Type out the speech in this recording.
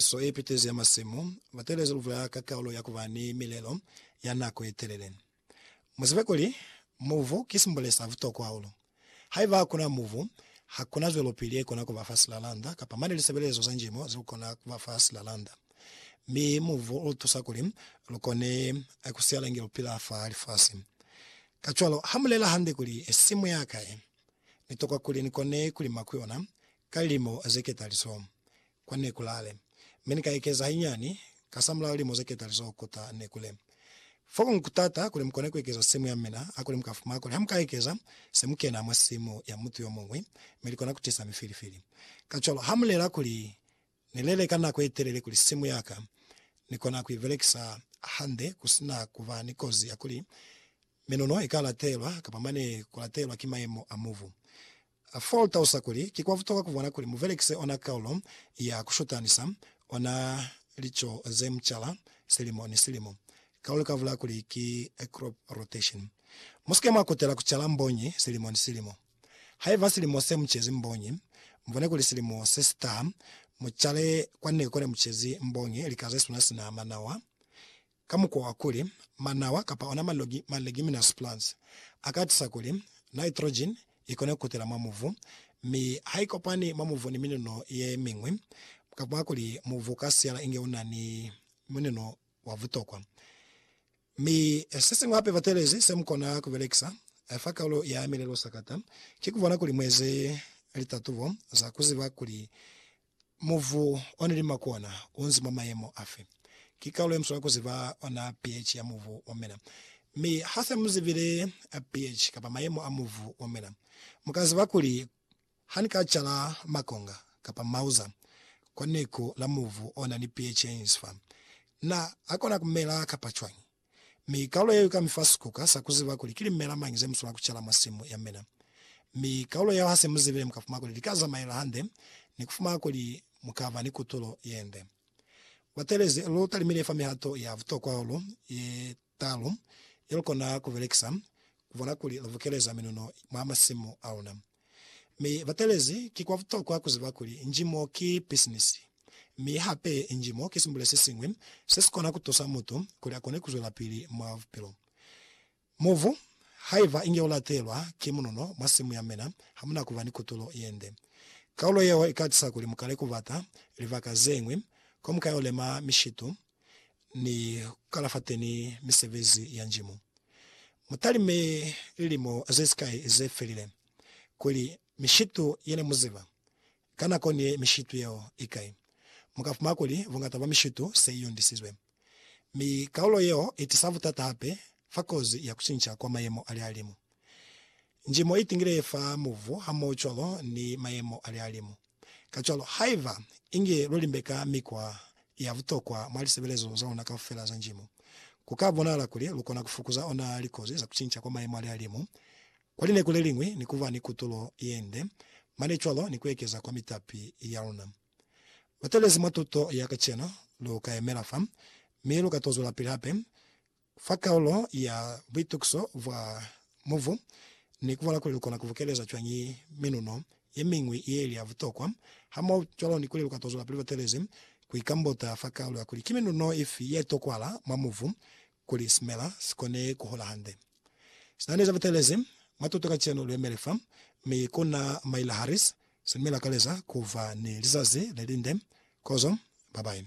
So ye Ipitezi ya Masimu, Batelezi lu bula ka kaulo ya ku ba ni milelo ya nako ye telele. Mu zibe kuli, mubu ki simbole sa butokwa hahulu. Haiba ha ku na mubu, ha ku na zwelopili ye kona ku ba fa silalanda kapa mane lisebelezo za njimo ze lu kona ku ba fa silalanda. Mi mubu u lu tusa kuli lu kone ku siala inge lu pila fa lifasi. Kacwalo, ha mu lela hande kuli, Simu ya ka ye ni tokwa kuli ni kone ku lima ku yona ka lilimo ze ketalizo, Kwa neku lale, mi ni ka ekeza hainyani, kasamulaho lilimo ze ketali zo kuta neku le. Fo ku kutata kuli mu kone ku ekeza simu ya mina, hakuli mu ka fumana kuli ha mu ka ekeza, se mu kena mwa simu ya mutu yo muñwi, mi li kona ku tisa mifilifili. Kacwalo, ha mu lela kuli, Ni lele ka nako ye telele kuli simu ya ka ni kona ku i belekisa hande ku si na ku ba ni kozi ya kuli minono i ka latelwa kapa mane ku latelwa ki mayemo a mubu, A fa lutalusa kuli ki kwa butokwa ku bona kuli mu belekise ona kaulo ya ku shutanisa ona lico ze mu cala silimo ni silimo. Kaulo ka bulaya kuli ki crop rotation. Mu si ke mwa kutela ku cala mbonyi silimo ni silimo. Haiba silimo se mu cezi mbonyi, mu bone kuli silimo se si taha mu cale kwa neku ne mu cezi mbonyi lika ze suna sina manawa, ka mukwa wa kuli manawa kapa ona malogi ma leguminous plants a ka tisa kuli nitrogen i kone ku kutela mwa mubu, mi ha i kopani mwa mubu ni minuno ye miñwi, ka mwa kuli mubu u ka siyala inge u na ni minuno wa butokwa. Mi se siñwi hape batelezi se mu kona ku belekisa fa kaulo ya milelo sakata ki ku bona kuli mu eze litatubo za ku ziba kuli Mubu o na li makona u nzi mwa mayemo afi? Ki kalulo ye muswaa ku ziba ona pH ya mubu wa mina. Mi ha se mu zibile pH kapa mayemo a mubu wa mina, mu ka ziba kuli ha ni ka cala makonga kapa mauza kwa neku la mubu o na ni pH ye nzi fa, na a kona ku mela kapa cwañi. Mi kaulo yeo ika mifa sikuka sa kuziba kuli ki limela mañi zemuswela kucala mwa simu yamina. Mi kaulo yeo hase muzibile mukafuma kuli lika zamaela hande ni kufuma kuli mukaba ni kutulo yende. Batelezi, lu talimile fa mihato ya butokwa hahulu ye talu yelukona kubelekisa kubona kuli lubukeleza minuno mwa masimu aluna. Mi batelezi ki kwa butokwa ku ziba kuli nji mo ki pisinisi, mi hape nji mo ki simbule se siñwi se si kona ku tusa mutu kuli a kone ku zwelapili mwa bupilo. Mubu, Haiba inge u latelwa ki munono mwa simu ya mina, ha mu na ku ba ni kutulo ye nde. Kaulo yeo i ka tisa kuli mu kale ku bata libaka ze ñwi ko mu ka yo lema mishitu ni kukalafateni ni misebezi ya njimu. Mutalime lilimo zesikai zefelile kuli mishitu yene muziba ka nako ni mishitu yeo ikai. Mukafumana kuli bungata bwa mishitu se iyondisizwe, mi kaulo yeo itisa butata hape fa kozi ya kucinca kwa mayemo alihalimu. Njimo i tingile fa muvu hamohocwalo ni mayemo a lihalimu. Kacwalo, haiba inge lu limbeka mikwa ya butokwa mwa lisebelezo za luna kaufela za njimo, ku ka bonahala kuli lu kona ku fukuza ona likozi za ku cinca kwa mayemo a lihalimu kwa lineko le liñwi ni ku ba ni kutulo ye nde mane cwalo ni ku ekeza kwa mitapi ya luna. Batelezi mwa tuto ya kacenu lu ka yemela fa mi lu ka to zwelapili hape Fa kaulo ya Buitukiso bwa Mubu, ni kubola kuli lukona kubukeleza cwañi minuno yemiñwi yeili ya butokwa, hamohocwalo ni kuli lukatozwelapili luetelezi kuikambota fa kaulo ya kuli ki minuno ifi yetokwahala mwa mubu kuli simela sikone kuhola hande. Sinani ze butelezi mwa tuto kacenu luemele fa, mi kuna Myla Harris, silume lakaleza kuba ni lizazi lelinde. Kozo, babayi.